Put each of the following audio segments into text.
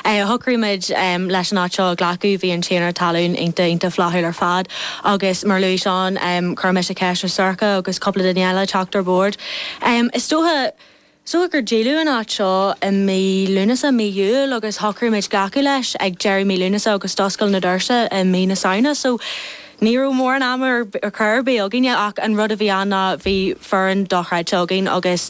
Shocraigh muid leis an áit seo a ghlacadh, bhí an tiarna talún iontach, iontach flaithiúil ar fad agus mar a luaigh Seán, chuir mise ceist ar Sorcha agus cúpla duine eile teacht ar bord. Is dócha gur díoladh an áit seo i mí Lúnasa, mí Iúil agus shocraigh muid glacadh leis ag deireadh mí Lúnasa agus d'oscail na doirse i mí na Samhna, so ní raibh mórán ama ar chor ar bith againne ach an rud a bhí ann ná bhí foireann dochreidte againn agus.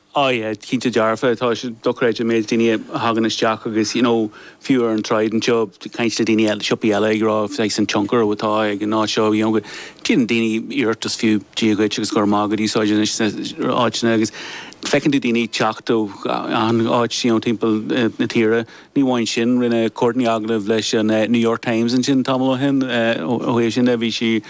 Aye, cinnte dearfa, tá sé dochreidte an méid daoine a thagann isteach agus you know fiú ar an tsráid anseo ag caint le daoine eile, siopaí eile ag rá saghas an tionchar atá ag an áit seo you know go ndéanann daoine iarracht fiú Dia dhuit agus go raibh maith agat a úsáid anois sna áiteanna agus feiceann tú daoine ag teacht ó achan áit you know timpeall na tíre. Ní amháin sin, rinne Courtney agallamh leis an New York Times ansin tamall ó shin ó thaobh sin de bhí sí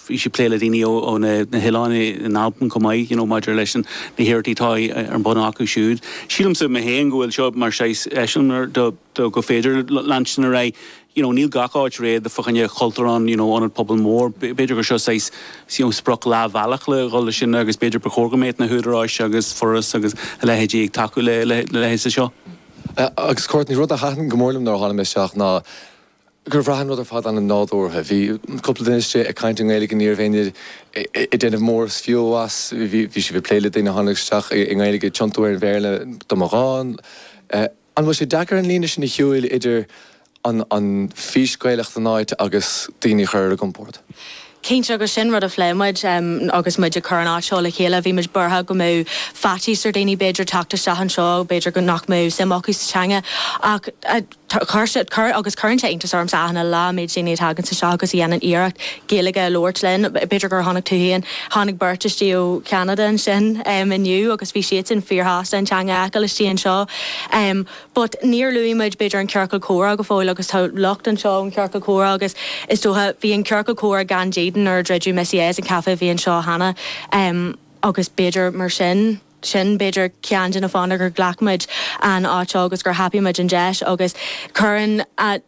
bhí sí ag plé le daoine ó na hoileáin in Albain chomh maith, you know maidir leis na hiarrachtaí atá ar bun acu siúd. Sílimse mé féin go bhfuil seo mar saghas eiseamláir do gur féidir leanstan ar aghaidh, you know níl gach áit réidh fá choinne Cultúrlann, you know ionad pobail mór, b'fhéidir gur seo saghas you know sprioc leathbhealach le dhul leis sin agus b'fhéidir ba chóir go mbeadh na húdaráis agus Foras agus a leithéidí ag tacú le leithéid de seo. Agus Courtney, rud a thaitin go mór liom nuair a tháinig mé isteach ná, gur bhraith an rud ar fad an-nádúrtha. Bhí cúpla duine istigh ag caint i nGaeilge, ní raibh éinne ag déanamh mór is fiú as, bhí siad ag plé le daoine a tháinig isteach i nGaeilge ag tiontú ar an Bhéarla dá mba ghá. An bhfuil sé deacair an líne sin a shiúil idir an fís Gaelach den áit agus daoine a chur ar a gcompord? Cinnte, agus sin rud a phléigh muid agus muid ag cur an áit seo le chéile, bhí muid buartha go mbeadh faitíos ar dhaoine b'fhéidir teacht isteach anseo, b'fhéidir nach mbeadh suim acu sa teanga ach chuir, agus cuireann sé iontas ormsa achan uile lá an méid daoine a thaganns isteach agus a dhéanann iarracht Gaeilge a labhairt linn. B'fhéidir gur chonaic tú féin, tháinig beirt istigh ó Cheanada ansin inniu agus bhí siadsan fíor-shásta an teanga a fheiceáil istigh anseo. But níor luaigh muid b'fhéidir an ciorcal comhrá go fóill agus tá lucht anseo ón chiorcal comhrá agus is dócha, bhí an ciorcal comhrá gan dídean nuair a druideadh Missy A's, an caife a bhí anseo cheana em agus b'fhéidir mar sin, sin b'fhéidir ceann de na fáthanna gur ghlac muid an áit seo agus gur thapaigh muid an deis agus cuireann na,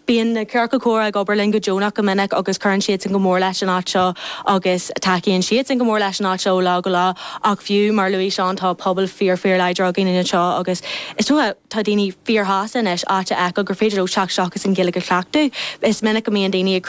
bíonn na ciorcail comhrá ag obair linn go deonach go minic agus cuireann siadsan go mór leis an áit seo agus tacaíonn siadsan go mór leis an áit seo ó lá go lá. Ach fiú mar a luaigh Seán, tá pobal fíor-fíorláidir againn anseo agus is dócha, tá daoine fíorshásta anois áit a fheiceáil gur féidir leo teacht isteach agus an Ghaeilge a chleachtadh. Is minic go mbíonn daoine ag